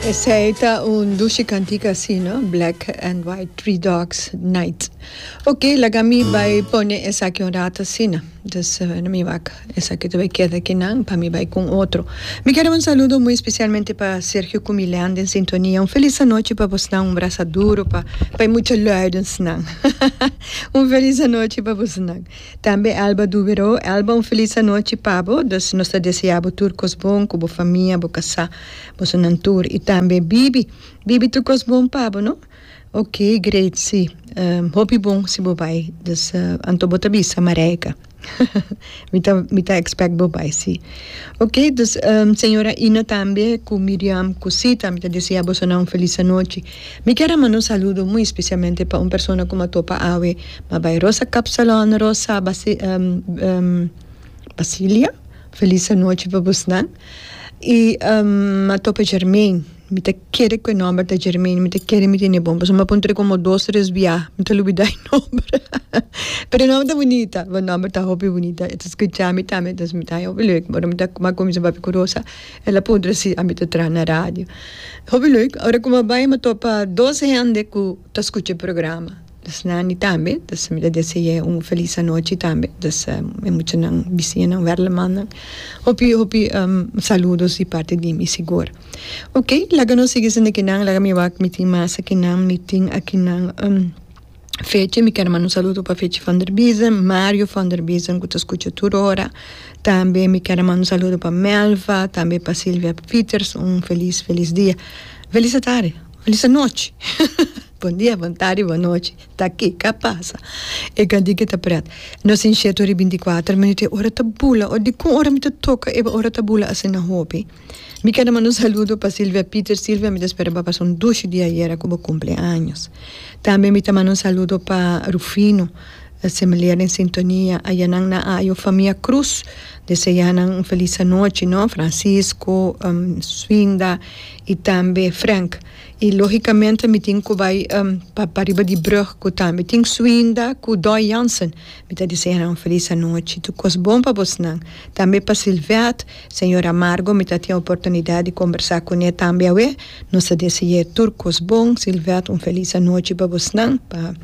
Esei ta un dushi cantica así no, Black and White Three Dogs Night. Ok, laga mi bai pone esaki un rato asina. Dus eh, no mi wak esaki tu bai keda aquí nan, pa mi bai con otro. Mi quiere un saludo muy especialmente pa Sergio cu Milean den sintonia. Un feliz anochi pa bosnan, un brasa duro pa pa e mucha luidensnan. Un feliz anochi pa bosnan. Tambe Alba Dubero, Alba un felis anochi pa bo, dus nos ta desea bo tur kos bon ku bo famia, bo kasá, bosonan tur i tambe Bibi, Bibi tur kos bon pa bo no, ok great si hopi bon si bo bai dus anto bo ta bisa Marijke mi ta mi ta expect bo bai si ok dus señora Ina tambe ku Miriam ku Sita mi ta desea bosonan un felis anochi Mi kier a manda un saludo muy especialmente pa un persona cu m'a topa awe, m'a bay Rosa Cap Salon, Rosa Basilia, feliz anochi pa busnan y m'a topa Germaine, mi ta kere cu e nomber ta Germaine, mi ta kere mi tene e bon pasobra m'a puntra como dos tres bia mi ta olbida e nomber pero e nomber ta bunita, e nomber ta hopi bunita, e ta scucha mi tambe entonces mi ta haña hopi lek ora mi ta m'a cuminsa papia cu Rosa. El a puntra si ami ta traha na radio. Hopi lek, ora ku mi a bai mi a topa dos hende ku ta skucha e programa. Esnan di tambe ta sa, mi ta desei'é un felis anochi tambe, ta sa e muchanan bisinan, werlemannan. Hopi, hopi saludos di parti di mi sigur. Oke, laga nos sigui sintikinan, laga mi wak mi tin masa kinan mi tin aki nan. Fece, mi ker manda un saludo pa Fece van der Biesen, Mario van der Biesen cu ta scucha tur ora, tambe mi ker a manda un saludo pa Melva, tambe pa Silvia Fieters, un felis felis dia, felis atardi, felis anochi, bon dia, bon tardi, bon nochi, taki ca pasa, e genti que ta pret, no sin shetory binticuater minuto e ora ta bula, o dicun ora mi ta toca e ora ta bula asina hopi. Mi keda manda un saludo pa Silvia Pieter, Silvia mi ta spera bo a pasa un dushi dia ayera ku bo kumple años. Tambe mi ta manda un saludo pa Rufino, Semilea den sintonia, ayanan na ayo famia Cruz deseanan un felis anochi no, Francisco, Swinda i tambe Frank. I logicamente mi tin ku bai pa pa riba di brug ku tambe tin Swinda ku Doy Jansen mi ta desea nan un felis anochi, tur kos bon pa bosnan, tambe pa Silvette. Señora Margo mi ta tin oportunidad di combersa cune tambe awe, nos a deseye tur cos bon, Sylvette un feliz anochi pa bosnan, pa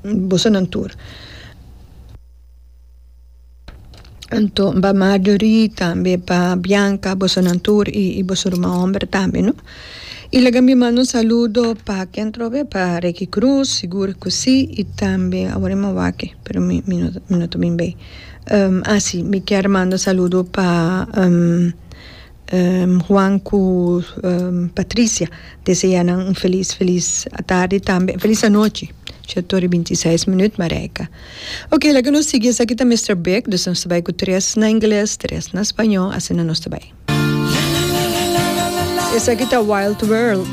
bosonan tur. Anto pa Marjorie tambe pa Bianca bosonan tur y y boso ruma homber tambe no. Y laga mi manda un saludo pa ken trobe pa Ricky Cruz sigur cu si y tambe awor mi a wak mi no ta bin bay. a si mi kier manda saludo pa Juan cu Patricia desea nan un feliz feliz atardi tambe feliz anochi sha tur y binti y seis minuut Marijke ok laga nos sigui esaki ta Mister Big nos ta bay cu tres na ingles tres na spaño asina nos ta bay esaki ta Wild World.